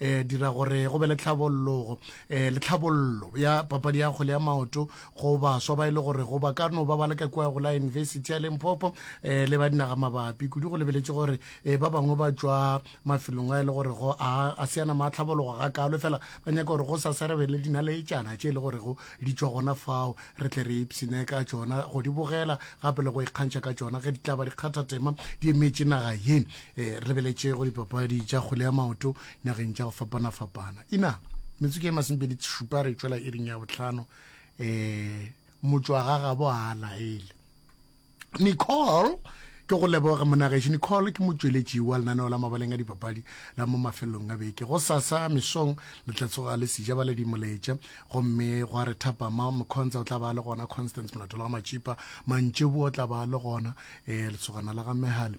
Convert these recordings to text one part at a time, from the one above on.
eh dira gore go be le tlhabollogo eh le tlhabollo ya papadi ya kgole ya maoto go baswa ba e le gore go ba ka no ba ba leka kua go la university ya limpopo eh le ba dinaga mabapi kudu go lebeletše gore eh ba bangwe ba tšwa mafelong a e le gore go a a seana ma tlhabologo ga kalo fela ba nyaka gore go sa serebe le dina le etšana tše e le gore go di tšwa gona fao re tle re ipsine ka tšona go di bogela gape le go ikgantšha ka tšona ge di tla ba dikgathatema di emetše naga ye e re lebeletše go dipapadi tša kgole ya maoto nageng tša go fapana-fapana ina metsotso e masempedi šupa re tšwela e ring ya botlhano um motswagagabo a laele nicole ke go leboga monageši nicole ke motšweletši wa lenaneo la mabaleng a dipapadi la mo mafelelong a beke go sasa mesong le tla tsoga le sija ba le dimoletša gomme go a re thapama mokgontsa o tla ba le gona constance molato la ga matšipa mantšebo o tla ba le gona um letsogana la ga mehale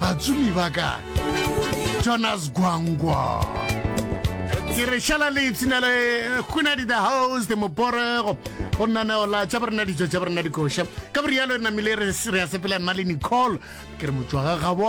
Batsumi ba ka Jonas Gwangwa ke re šala le ipshina le gonadi the house the moporego go nnaneo la tša borena dijo tša borena dikoša ka borialo re namile re ya sepela nna le nicole ke re motswaga gabo